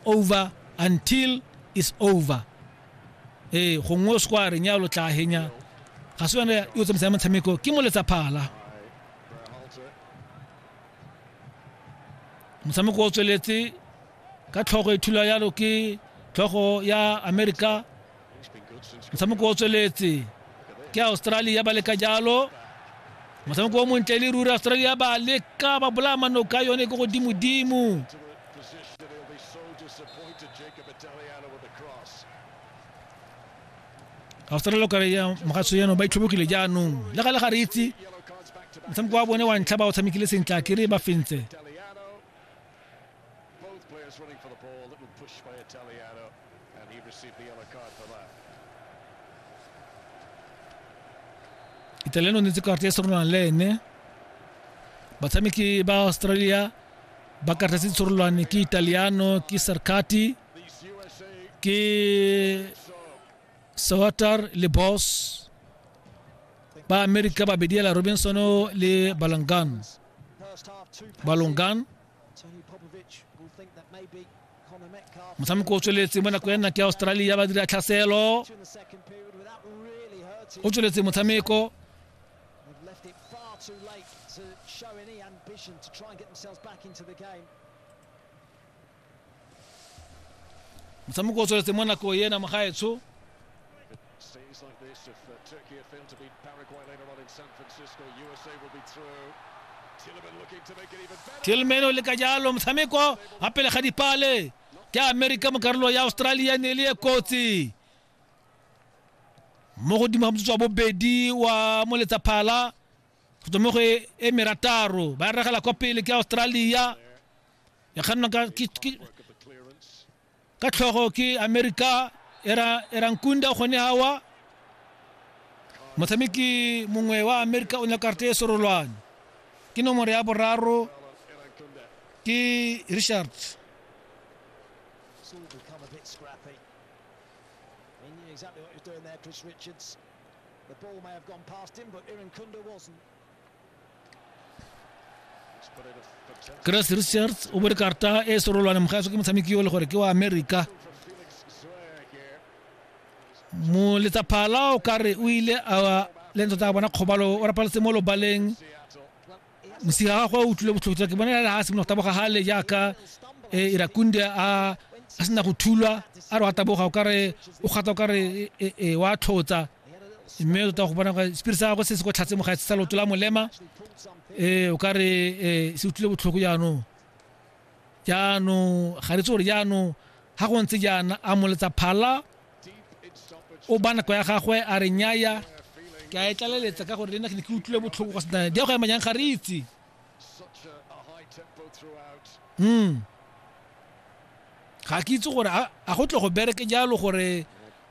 over until is over ee gongwe o se kwa reng ya lo tla henya ga se yone yo tsamaisang motshameko ke moletsa phala motshameko o tsweletse ka tlhogo e thula yalo ke tlhogo ya america motshameko o tsweletse ke australia ba leka jalo motshameko o montle le ruri australia ba leka ba bolaya manoka yone ko godimodimo australia kare ya mogatso yano ba itlhobokile jaanong le ga le ga re itse motshameko wa bone wa ntlha ba o tshamekile sentle a kere ba fentse And he received the yellow card for that. italiano netse karata e serolwana le ene batshameki ba australia ba karata se serolwane ke italiano ke sarkati These USA ke sawatar le boss ba america babedi ela robinson le balangan First half, two passes. balongan Tony Popovic will think that maybe motshameko o tsweletse mo nako ya nna ke australia ba dira tlhaselo o tsweletse motshameko motshameko o tsweletse mo nako ena mogaetsho Scenes like this, if uh, Turkey had failed to beat Paraguay later on in San Francisco, USA will be through. Tillman looking to make it even better. tilmeno le ka jalo motshameko a pele ga dipale ke amerika mo karolo ya australia ne e le e kotsi mo godimo ga motsotso wa bobedi wa moletsaphala go tswa mo go e e merataro ba e regela kwa pele ke australia ya kgannwa ka ke- ke- Work of the clearance. ka tlhogo ke america era era nkunda gone hawa motshameki mongwe wa america o nyakarte e sorolwane ke nomoro ya boraro ke richard Exactly what he was doing there, Chris Richards. The ball may have gone past him, but Iran Kunda wasn't. chris richards o bore karta e serolwane mogaso ke motshameki yo le gore ke wa america mo letsa phala o ka re o ile a le ntse tsa bona kgobalo o rapaletse mo lobaleng mosiga gagwe o utlwile botlhokotswa ke bona le ha simologo taboga gale jaaka e, irakunde a a sena go thulwa a re wa taboga o kare o kgata o kare e, e, wa tlhotsa mme tota go bona sepiri sa gagwe se se ko tlhatse mo gaetse sa loto la molema um o ka re um se utlwile botlhoko jaanong jaanong ga re tse gore jaanong ga go ntse jaana a moletsa phala o ba nako ya gagwe a re nyaya ke a e tlaleletsa ka gore le nna ke ne ke utlwile botlhoko kwa senane di ya go ema jang ga re itse um ga ke itse gore a go tle go bereke jalo gore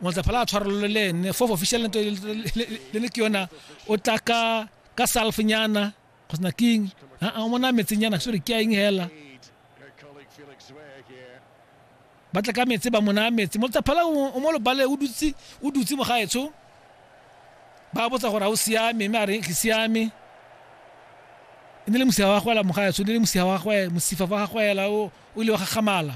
Motsafala a tshwarolole le ene fof official nto le ne ke yona o tla ka ka self nyana go sena king a o mona metse nyana sore ke eng hela ba tla ka metse ba mona metse motsafala o mo lobale o dutse o dutse mo gaetsho ba botsa gore a o siame mme a re ke siame e ne le mosifa wa gagwe la mogaetsho ne le mosifa wa gagwe mosifa wa gagwe la o ile wa gagamala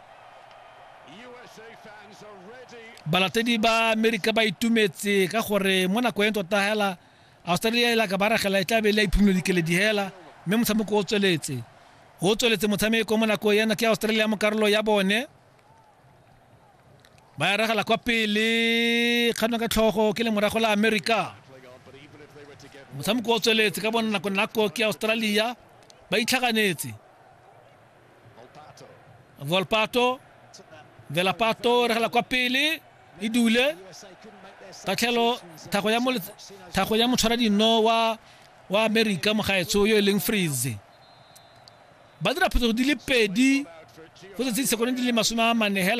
balatedi ba amerika ba itumetse ka gore mo nako e tota hela australia e la ka ba ragela e tla be le a iphumole dikeledi hela mme motshameko o tsweletse o tsweletse motshameko mo nako yana ke australia mo karolo ya bone ba ya ragela kwa pele kganwa ka tlhogo ke le morago la amerika motshameko o tsweletse ka bona nako nako ke australia ba itlhaganetse volpato velapato re gela kwa pele e dule tatlhelo thago ya thago ya motshwara dino wa wa america mogaetsho yo e leng freeze ba dira phetogo di le pedi go tsetse disekone di le masome a mane hela